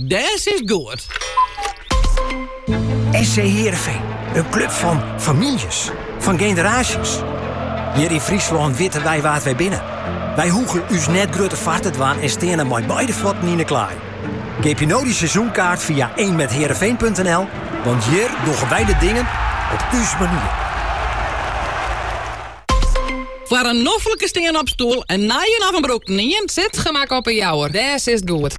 Dêst goed! SC Heerenveen, in klup fan famyljes, fan generaasjes. Hjir yn Fryslân witte wy wa't wy binne. Wy hoege ús net grutter foar te dwaan en steane mei beide fuotten yn 'e klaai. Keapje no dy seizoenkaart fia ienmeiheerenveen.nl, want hjir dogge wy de dingen op ús manier. Foar in noflike stean-op stoel, in nije of in brûkten ien, Sitgemak op 'e Jouwer, dêr sitst goed.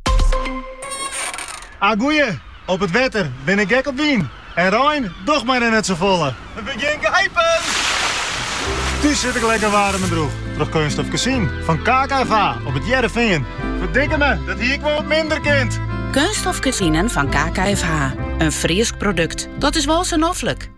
Ah goeie, op it wetter bin ik gek op wyn en rein doch mar net sa folle. It begjint te eazjen! Thús sit ik lekker waarm en droech troch keunststof kezinen fan KKFH op it Hearrenfean. Ferdikke me, dat hie wol wat minder kind. Keunststof kezinen fan KKFH, in Frysk produkt, dat is wol sa noflik.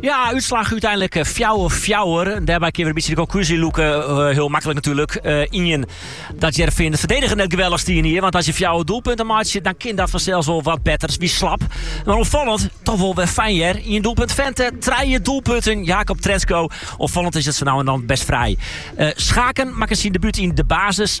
Ja, útslach úteinlik fjouwer fjouwer. Dêrby kin we in bytsje de konklúzje lûke. Eh, hiel maklik natuurlijk. Eh, ien, dat Hearrenfean ferdedigjend net geweldich stie hjir. Want as je fjouwer doelpunten meitsje, dan kin dat fansels wol wat better. Wie slap. Mar opfallend, toch wol wer fyn hjir. Ien doelpunt Vente, trije doelpunten Jacob Trenskow. Opfallend is it sa no en dan bêst frij. Eh, Schaken makket syn debút yn de basis.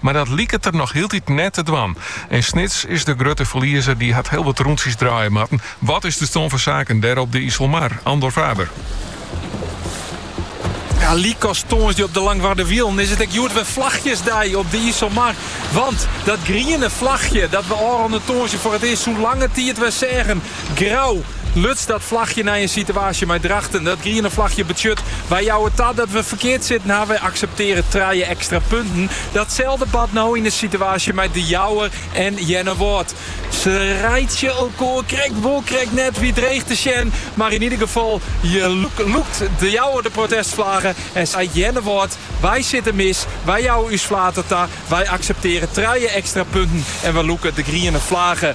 Mar dat liket er noch hieltyd net te dwaan. En Snits is de grutte ferliezer, dy hat hiel wat rûntsjes draaie moatten. Wat is de stân fan saken dêr op de Iselmar? Andor Faber. Ja, lykas tongersdei op de Langwarder Wielen is it ek hjoed wer flachjesdei op de Iselmar. Want dat griene flachje dat we ôfrûne tongersdei foar it earst sûnt lange tiid wer seagen, Grou luts dat flachje nei in situaasje mei Drachten. Dat griene flachje betsjut, wy jouwe ta dat we ferkeard sitten ha. Wy akseptearje trije ekstra punten. Datselde bart no yn in situaasje mei De Jouwer en Earnewâld. Se reitsje elkoar krekt wol krekt net wie dreech te sjen, mar yn ieder gefal lûkt De Jouwer de protestflage en seit Earnewâld, wy sitte mis, wy jouwe ús flater ta, wy akseptearje trije ekstra punten en we lûke de griene flage.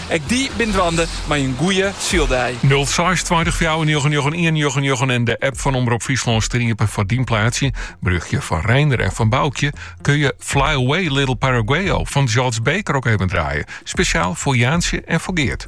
Ek dy bin dwaande mei in goeie syldei. 06 20 499 199 en de app fan Omrop Fryslân stean iepen foar dyn plaatsje. Berjochtsje fan Reinder en fan Boukje kun je Fly Away Little Paraguayo fan George Baker ook even draaien. Spesjaal foar Jaantsje en foar Geert.